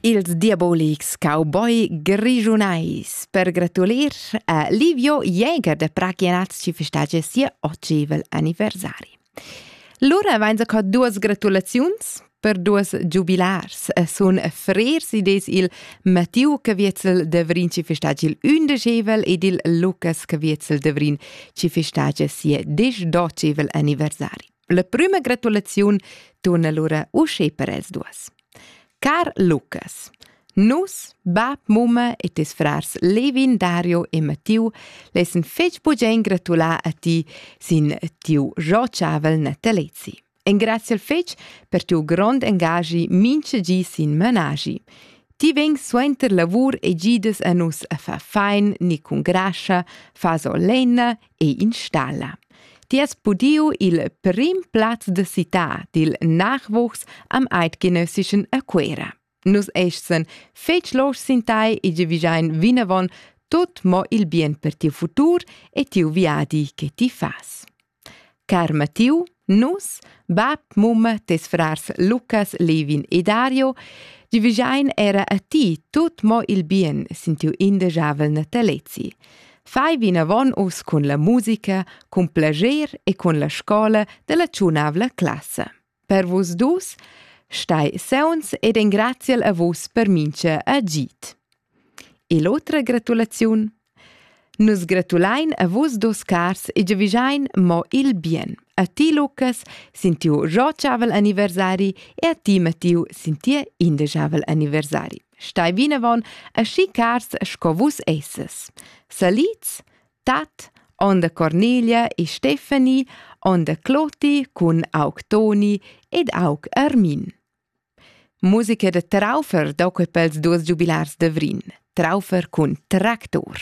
Ils diabolics cowboy grischunais per gratulir a Livio Jäger da Prachianaz ci festagia sia ocevel anniversari. Lura vainsa co duas gratulaziuns per duas giubilars e sun frers ides il Mattiu Caviezel Devrin ci festagia il ündeschevel ed il Lukas Caviezel Devrin ci festagia sia disdocevel anniversari. La prüma gratulaziun tuna lura usche per els duos. Car Lucas, Nus, bab, mumma e tes frars Levin, Dario e Mattiu lessen fetg bugen gratular a ti sin tiu rociavel natalezi. Engraziel fetg per tiu grond engagi minche gi sin managi. Ti veng suenter lavur e gides a nus a far fein ni cun grascha, fa so lenna e installa. Ti has pudiu il prim plaz de cità dil nachwuchs am eidgenössischen a Cuera. Nus essen fetg losch sin tai e ge vigiain vinavon tut mo il bien per tiu futur e tiu viadi che ti fas. Car Mattiu, Nus, bab, mumma, tes frars Lucas, Levin e Dario, ti vigiain era a ti tut mo il bien sin tiu indegiavel natalezi. Fai vinavon us cun la musica, cun plager e cun la scola della tschunavla classa. Per vus dus stai seunz ed engraziel a vus per mincha agit. E l'otra gratulaziun. Nus gratulain a vus dus cars e giavischein mo il bien. A ti, Lucas, sin tiu rotschavel anniversari e a ti, Mattiu, sin tia indeschavel anniversari. Stai vinavon aschi cars sco vus esses. Salids, tat, onda Cornelia e Stefani, onda Cloti cun aug Toni ed aug Armin. Musica da Traufer dà quei pels duos giubilars da Vrin. Traufer cun tractor.